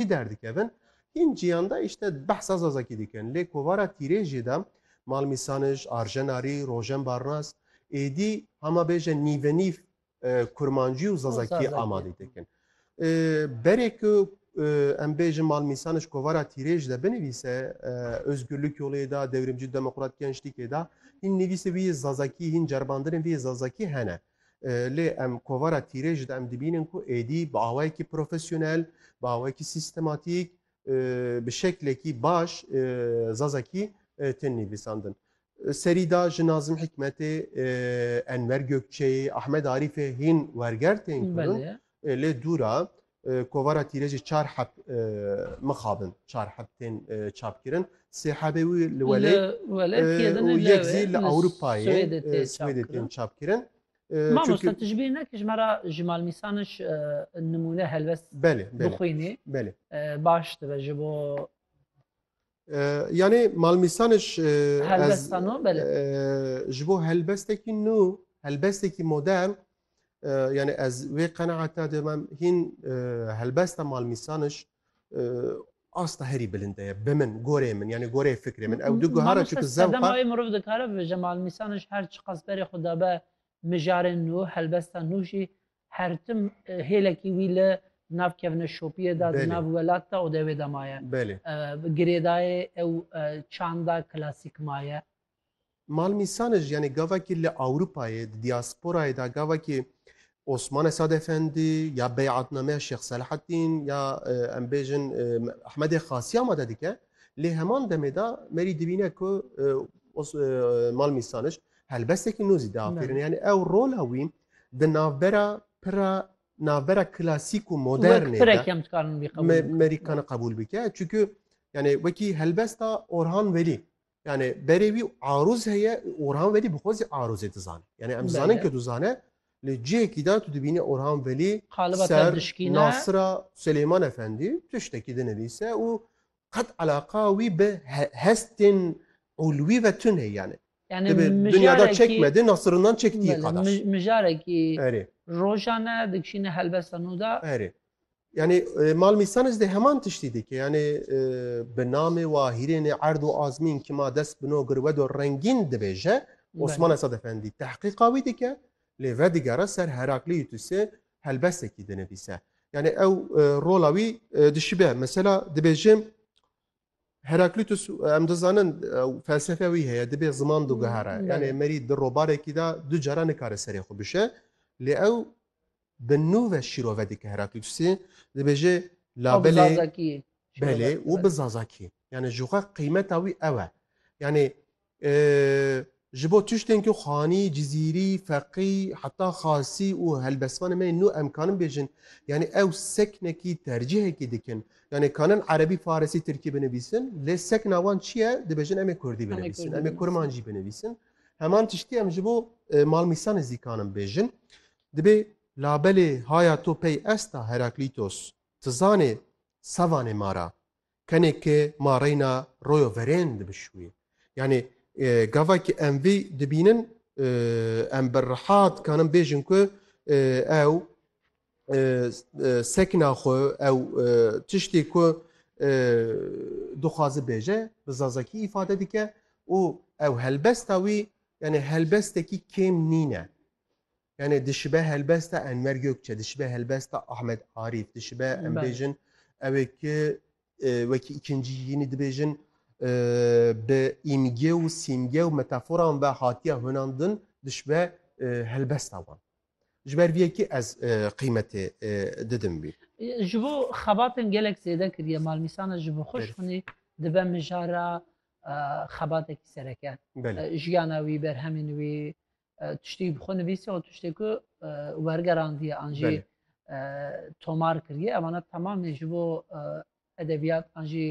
Hî derdikevin. Hîn ciyanda îşte behsa zazakî dikin. Lê kovara tîrêjê de Mal Mîsanij, Arjen Arî, Rojen Barnas êdî hema bêje nîvenîv kurmancî û zazakî amadî dikin. Berê ku em bêjin Mal Mîsanij kovara tîrêj de binivîse Ozgurlik Yolê de, Dewrimcî Demokrat Gençlîkê de hîn nivîsê wî yê zazakî, hîn ceribandinên vî yê zazakî hene. Lê em kovara tîrê ji de em dibînin ku êdî bi awayekî profesyonel, bi awayekî sîstematîk, bi şeklekî baş Zazakî tên nivîsandin. Serî da ji Nazim Hikmetê, Enver Gökçeyê, Ahmed Arîfê hîn werger tên kirin. Lê dûra kovara tîrêjî çar heb mixabin. Çar heb tên çapkirin. Sê hebê wî li welê û yek zî li Ewropayê Swêdê tên çapkirin. Mamosta tu ji bîr nekî ji me re ji Malmîsan iş nimûne helbest bixwînî baş dibe ji bo Yanê malmîsanê ji ji bo helbestekî nû helbestekî modern yanê ez wê qeneata de me hîn helbesta malmîsaniş asta herî bilinde ye bi min gorê min yanê gorê fikrê min ew du guhara çi zewqa mirov dikare bi ji malmîsaniş her çiqas berê xwe dabe mijarên nû helbesta nû jî Her tim hêlekî wî li nav kevne şopiyê de di nav welat de û dewê de maye. Girêdayê ew çanda klasîk maye. Malmîsane jî yanî gavekî li Ewropayê di dîasporayê de gavekî Osman Esad Efendî ya beyatnameya Şêx Selahattîn ya em bêjin Ehmedê Xasî amade dike. Lê heman demê de merî dibîne ku Malmîsaniş helbestekî nû zî diafirîne. Yanî ew rola wî Di navbera pira navbera klasîk û modernê de Merîkana qebûl bike. Çunku yani wekî helbesta Orhan Velî. Yani berê wî arûz heye Orhan Velî bi xwe zî arûzê dizane. Yani em dizanin ke dizane li cihekî de tu dibînî Orhan Velî ser Nasira Silêman Efendî tiştekî dinivîse û qet eleqa wî bi hestên ulwî ve tune yani. Yani Tabii mijarekî- dünyada çekmedi, nasırından çektiği Belê, kadar. mij- mijarekî Erê, rojan e dikişîne helbesta nû de. erê. Yani e, mal misanis de heman tiştî dike. Yani e, bi namê wa hîrênê erd û azmîn kima dest bino girwedo rengîn dibêje Belê. Osman Esad Efendî. Tehqîqa wî dike. Lê vedigere ser Heraklî Yutusê helbesekî dinivîse. Yanî ew rola wî dişibe. Mesela dibêjim Heraklitus em dizanin felsefe wî heye dibê ziman du gihara. Yani merî di robarekî de du cara nikare serê xwe bişe. Lê ew bi nû ve şîro vedike Heraklitusê dibêje labelê belê û bi zazakî. Yani ji xwe qîmeta wî ew e. Yani Ji bo tiştên ku Xanî, Cizîrî, Feqî, heta Xasî û helbestvanên me yên nû em kanin bêjin, yanî ew seknekî, tercîhekî dikin. Yanî kanin Erebî, Farisî, Tirkî binivîsin, lê sekna wan çi ye? Dibêjin em ê Kurdî binivîsin, em ê Kurmancî binivîsin. Heman tiştî em ji bo Malmîsanê zî kanin bêjin. Dibê labelê haya to pey esta, Heraklîtos, ti zanê sevanê ma ra. Tenê ke ma reyna royo verên dibişuye. Yanî gava ki em vî dibînin em bi riha dikanin bêjin ku ew sekna xwe ew tiştê ku dixwaze bêje bi zazakî îfade dike û ew helbesta wî yanî helbestekî kêm nîne. Yani dişibe helbesta Enver Gökçe, dişibe helbesta Ahmet Arif, dişibe em Belê. bêjin ew ê ki e, wekî îkincî yînî dibêjin e, bi îmge û sîmge û metaforan ve hatiye hunandin dişibe e, helbesta wan. Ji ber vê yekî ez e, qîmetê e, didim vî. Ji bo xebatên gelek zêde kiriye malmîsana ji bo xwe Belê. şixunî dibe mijara e, xebatekî sereke. Belê. E, Jiyana wî, berhemên wî, tiştî bi xwe nivîsî û tiştê ku wergerandiye an jî tomar kiriye emana temamê ji bo edebiyat an jî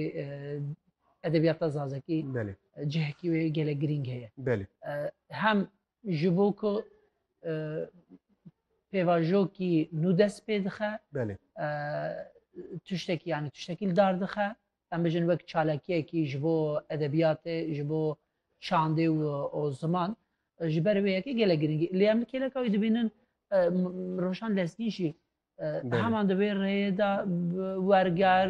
edebiyata zazekî cihekî wê gele girîng heye hem ji bo ku pêvajokî nû dest pê dixe tiştekî yanî tiştekî li dar dixe em bijîn wek çalakiyekî ji bo edebiyatê, ji bo çandê û ziman ji ber wê yekê gelek girîngî. Lê em li kêleka wî dibînin rojan lezgîn jî heman di wê rêyê de werger,